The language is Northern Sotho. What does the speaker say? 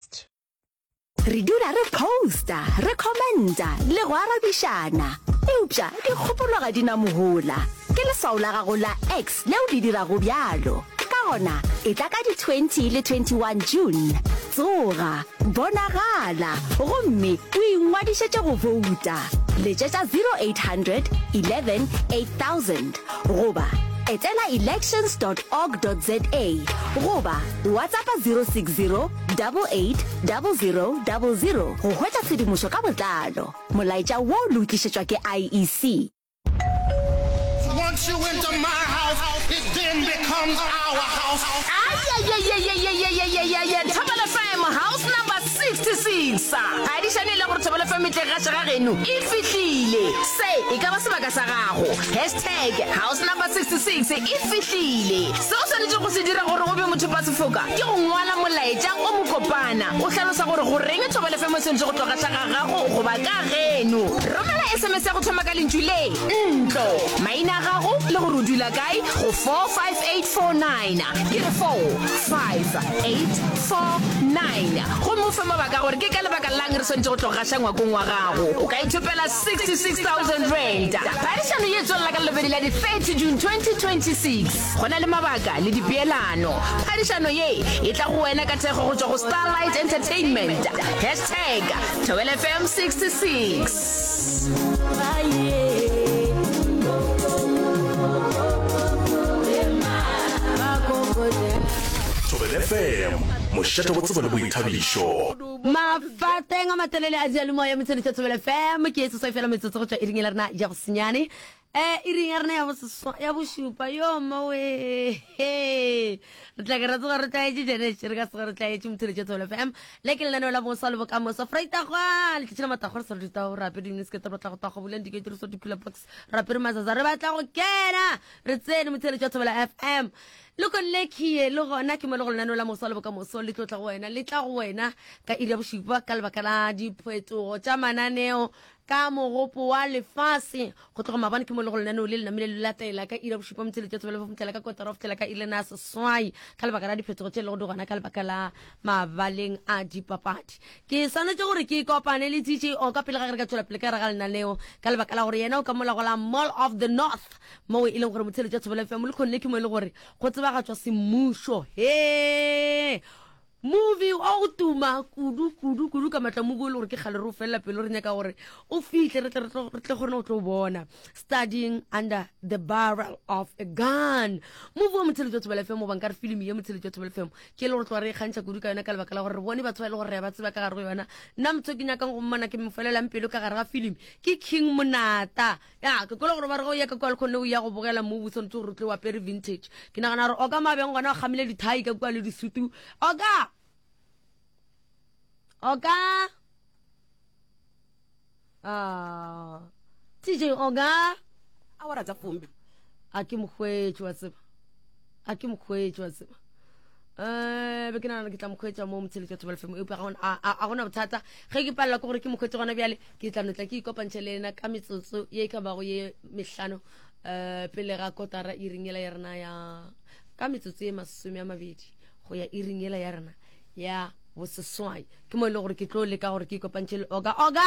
St. Re dula re posta, re commenta le go arabišana. Eupša dikgopolo ga di na mohola. Ke leswao la gago la X leo le dirago bjalo. Ka gona, etla ka di 20 le 21 June. Tsoga, bonagala, gomme o ingwadišetše go bouta. Letšetša 0800 11 8000. goba etela elections.org.za goba WhatsAppa 060 88 00 00 go hwetša tshedimošo ka botlalo. Molaetša wo le o tlišetšwa ke IEC. Once you enter my house, it then becomes our house. Ayayayayayayayayayay Thobela FM House Number 56 ga di šane e le gore thobelo fa metleng ga šega geno e fihlile se e ka ba sebaka sa gago hashtag house number 66 e fihlile se o swanetše go se dira gore o be mothopa sefoka ke go ngwala molaetša o mokopana o hlalosa gore go reng thobelo fa mo sentše go tloga šega gago goba ka geno romela sms ya go thoma ka lentšu le ntlo maina a gago le gore o dula kae go 45849 ke re 458 49 gomme o fe mabaka a gore ke ka lebaka lang re swanetše go tlo gaša ngwakong wa gago o ka ithopela 66000 rand phadišano ye tswelela ka lebedi la di-30 june 2026 go na le mabaka le dipeelano phadišano ye e tla go wena ka thekgo go tšwa go starlight entertainment hashtag thobelfm 66 fm mošate go tsebo le boithabišo mafateng a matelele a dialemo ya motshwanetša tsebele fm ke e sesoi fela metsotso go tšwa iring e la rena ya go senyane E, iring ya rena ya boseswa ya bošupa yo mmawe he re tla ke ra tsoga re tlaetše janese re ka sega re tlaetše mothiretše tholo fm le ke lenaneo la bosa le bokamoso freitagwa letšatši la matagwa re sa re ditao re apere diniskete re batla go tagwa boleng dike tiriso dikula box re apere mazaza re batla go kena re tsene mothiretše wa thobela fm le ko lekie le gona ke mo le go lenaneo la mosa le bokamoso le tlo tla go wena le tla go wena ka iri ya bošupa ka lebaka la diphetogo tša mananeo Ka mogopo wa lefase, go tloga mabane ke mologo lenaneo le le namile le latela ka iri ya bošupa motse letšatsi ba le fa go fihlela ka kotara go fihlela ka iri lena ya seswai ka lebaka la diphetogo tše lego di gona ka lebaka la mabaleng a dipapadi. Ke swanetše gore ke ikopane le TJO ka pele ga ge re ka tšwela pele ka gare ga lenaneo ka lebaka la gore yena o ka mola go la Mall of the North moo e leng gore motse letšatsi ba le fa Molekgone le ke mo e le gore go tsebagatšwa semmušo. Hee! Movie o go tuma kudu kudu kudu ka matlamuku e le gore ke kgale re o felela pelo re nyaka gore o fihle re tle re tle kgone go tlo bona studying under the barrel of a gun movie wa motsheletso wa thobela fm o banka re filimi ye motsheletso wa thobela fm ke e le gore tloga re e kgantšha kudu ka yona ka lebaka la gore re bone batho ba e le gore re ba tseba ka gare go yona nna motho ke nyakang go mmona ke mo felelang pelo ka gare ga filimi ke king monata Ya, ke kwele gore ba re ge o ya ka kua lekgone o ya go bogela mo, o swanetse gore o tle o apere vintage. Ke nagana gore oka mabeng gona o kgamile dithai ka kua le disutu. Oka! Oka! Ah, TJ, oka! Awara tsa fombe. A ke mokgwetši wa tseba. a ke mokgweetsi wa tseba um be ke nagana ke tla mokgweetsa mo motsheletso wa thobal fm eupša ga gona bothata ge ke palela ke gore ke mokgweetsi gona bjale ke tla notla ke ikopantšhe le ena ka metsotso ye e ka bago ye mehlano um pele ga kotara iring ela ya rena ya ka metsotso ye masome a mabedi go ya iring ela ya rena ya boseswai ke mo e le gore ke tlo leka gore ke ikopantšhe le oga oga